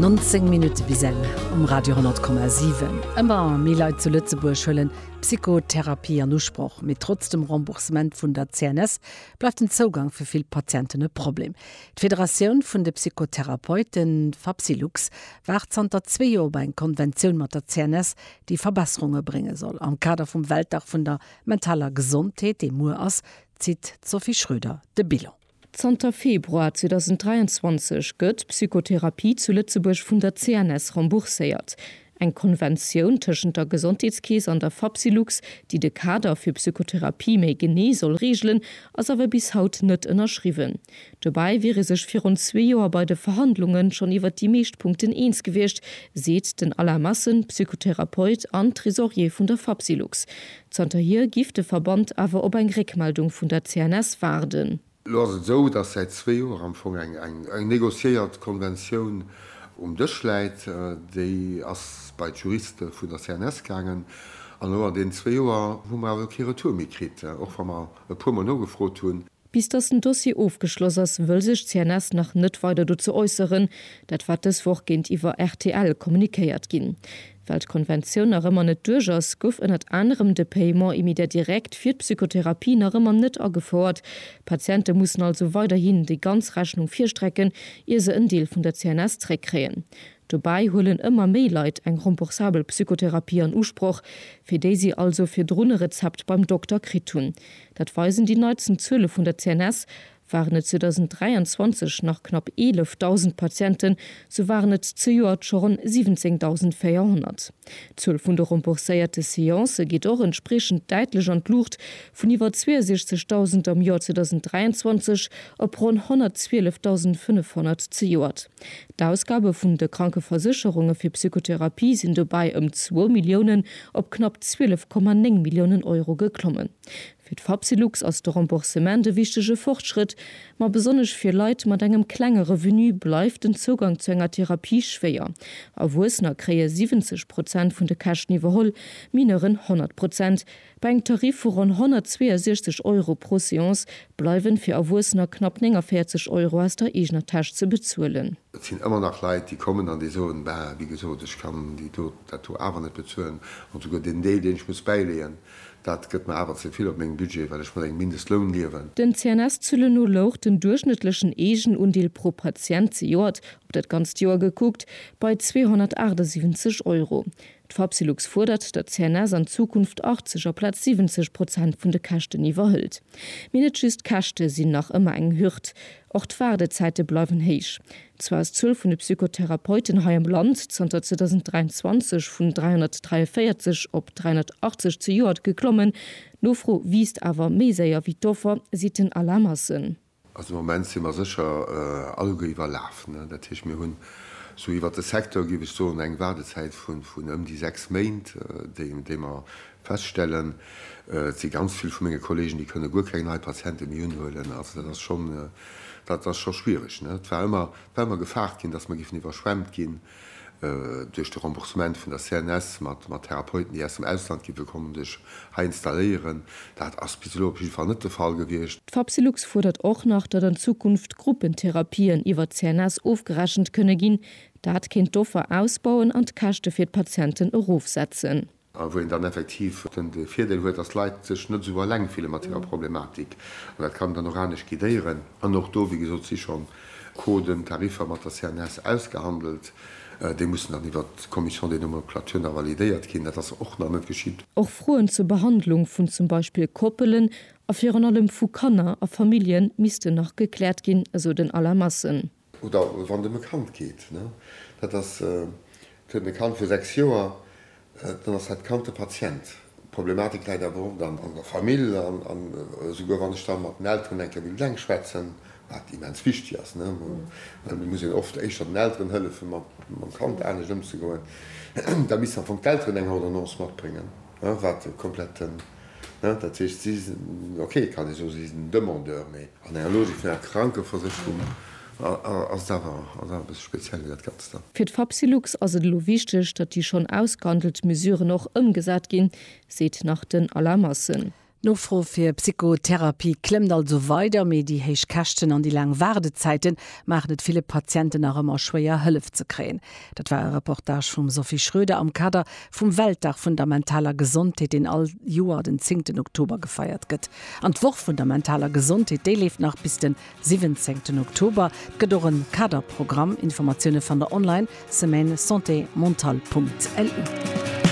19 Minutte bis eng um Radio 10,7. Ëmmer méi Leit zu Lëtzebuerg huelen d'Psychotherapie an Usproch. Mee trotz dem Remboursement vun der CNS bleift den Zougang fir vill Patienten e Problem. D'Federatioun vun de Psychotherapeuten, Fapsylux, waart zanter zwee Joer op eng Konventioun mat der CNS, déi Verbesserunge brénge soll. Am Kader vum Weltdag vun der mentaler Gesondheet, dee muer ass, zitt d'Sophie Schröder de Bilan. Zanter Februar 2023 gëtt Psychotherapie zu Lëtzebuerg vun der CNS rembourséiert. Eng Konventioun tëschent der Gesondheetskeess an der Fapsylux, déi de Kader fir Psychotherapie méi genee soll reegelen, ass awer bis haut net ënnerschriwwen. Dobäi wier ee sech virun zwee Joer bei de Verhandlunge schonn iwwer déi meescht Punkten eens gewiescht, seet den Alain Massen, Psychotherapeut an Tresorier vun der Fapsylux. Zanterhier giff de Verband awer op eng Réckmeldung vun der CNS waarden. Elo ass et esou, datt säit zwee Joer am Fong eng negociéiert Konventioun um Dësch läit. Déi ass bei d'Juriste vun der CNS gaangen an elo an deenen zwee Joer hu mer awer kee Retour méi kritt, och wa mer e puermol nogefrot hunn. Bis datt den Dossier ofgeschloss ass, wëll sech d'CNS nach net weider dozou äusseren. Dat war dës Woch géintiwwer rtl kommunikéiert ginn. Well d'Konventioun nach ëmmer net duerch ass, gouf ënnert anerem de Paiement immédiat direct fir d'Psychotherapie nach ëmmer net agefouert. D'Patiente mussen also weiderhin déi ganz Rechnung virstrecken, ier se en Deel vun der CNS zréckkréien. Dobäi huelen ëmmer méi Leit eng remboursabel Psychotherapie an Usproch, fir déi si also virdrun e Rezept beim Dokter kritt hunn. Dat weisen déi neitsten Zuele vun der CNS, Waren et 2023 nach knapp 11.000 Patienten, sou waren et zejoert scho ronn 17.400. D'Zuel vun de rembourséierte Seancë geet och entspriechend däitlech an d'Luucht, vun iwwer 62.000 am Joer 2023 op ronn 112.500 zejoert. D'Ausgabe vun de Krankeversécherunge fir Psychotherapie sinn dobäi ëm zwou Milliounen op knapp 12,9 Milliounen Euro geklommen. Fir d'Fapsylux ass de Remboursement e wichtege Fortschrëtt, ma besonnesch fir Leit mat engem klenge Revenu bleift den Zougang zu enger Therapie schwéier. Erwuessener kréie 70 Prozent vun de Käschten iwwerholl, Mineuren 100 Prozent. Bei engem Tarif vu ronn 162 Euro pro Seance bleiwen fir Erwuessener knapp 49 Euro aus der eegener Täsch ze bezuelen. Et sinn ëmmer nach Leit, déi kommen an déi soen, Bah, wéi gesot, ech kann déi do, dat do awer net bezuelen. An souguer deen Deel, deen ech muss bäileeën, dat gëtt mer awer ze vill op mengem Budget, well ech mat engem Mindestloun liewen. Den CNS-Zëlle no louch den duerchschnëttlechen Eegenundeel pro Patient, zejoert, op dat ganzt Joer gekuckt, bei 278 Euro. D'Fapsylux fuerdert, datt d'CNS an Zukunft 80 aplaz 70 Prozent vun de Käschten iwwerhëlt. Mee net just d'Käschte sinn nach ëmmer eng Hürd, och d'Waardezäite bleiwen héich. Zwar ass d'Zuel vun de Psychotherapeuten hei am Land zanter 2023 vun 343 op 380 zejoert geklommen, d'Nofro wiisst awer méi séier wéi d'Offer, seet den Alain Massen. Also am Moment si mer sécher alleguer iwwerlaf. Dat heescht, mir hunn sou iwwert de Secteur, géif ech soen, eng Waardezäit vun ëm déi sechs Méint, déi mer feststellen. Et si ganz vill vu menge Kolleegen, déi kënne guer keng nei Patiente méi unhuelen. Also dat ass schonn, dat ass scho schwiereg. Et war ëmmer gefaart ginn, datt mer géifen iwwerschwemmt ginn. Duerch de Remboursement vun der CNS mat Therapeuten, déi aus dem Ausland gi wëll kommen, sech hei installéieren, dat ass bis elo op jidde Fall net de Fall gewiescht. D'Fapsylux fuerdert och nach, datt an Zukunft Gruppentherapien iwwer d'CNS ofgerechent kënne ginn. Dat kéint d'Offer ausbauen an d'Käschte fir d'Patienten erofsetzen. A wou een dann effektiv den Virdeel huet, dass d'Leit sech net esou eleng fille mat hirer Problematik. An dat kann dann och anescht guidéieren. An och do, wéi gesot, si schonn Coden, Tariffer mat der CNS ausgehandelt. Déi mussen dann iwwert d'Commission des nomenclatures nach validéiert ginn. Dat ass och nach net geschitt. Och Froen zur Behandlung vun zum Beispill Koppelen a virun allem vu Kanner a Famillje missten nach gekläert ginn, esou den Alain Massen. Oder wann dem e Kand geet, dat ass, et huet e Kand vu 6 Joer, dann ass dat Kand de Patient. D'Problematik läit awer oft an der Famill. An esouguer wann ech da mat den Elteren eng Kéier wéilt eng schwätzen, wat immens wichteg ass, well et muss een oft éischter den Elteren hëllefen, mam Kand anescht ëmzegoen, da missten am Fong d'Elteren eng Ordonnance matbréngen, wat komplett den. Hein, dat heescht, si sinn, ok, kann ee soen, si sinn Demandeur, mee an enger Logik vun enger Krankeversécherung ass et awer, ass awer e bësse speziell wéi dat Ganzt dann. Fir d'Fapsylux ass et elo wichteg, datt déi schonn ausgehandelt Mesuren och ëmgesat ginn, seet nach den Alain Massen. D'Nofro fir Psychotherapie klëmmt also weider, mee déi héich Käschten an déi laang Waardezäite maachen et ville Patienten nach ëmmer schwéier, Hëllef ze kréien. Dat war e Reportage vum Sophie Schroeder am Kader vum Weltdag vun der mentaler Gesondheet, deen all Joer den zéngten Oktober gefeiert gëtt. An d'Woch vun der mentaler Gesondheet, déi leeft nach bis de siwwenzéngten Oktober. Et gëtt och e Kaderprogramm. Informatioune fannt der online, semaine santé mentale punkt lu.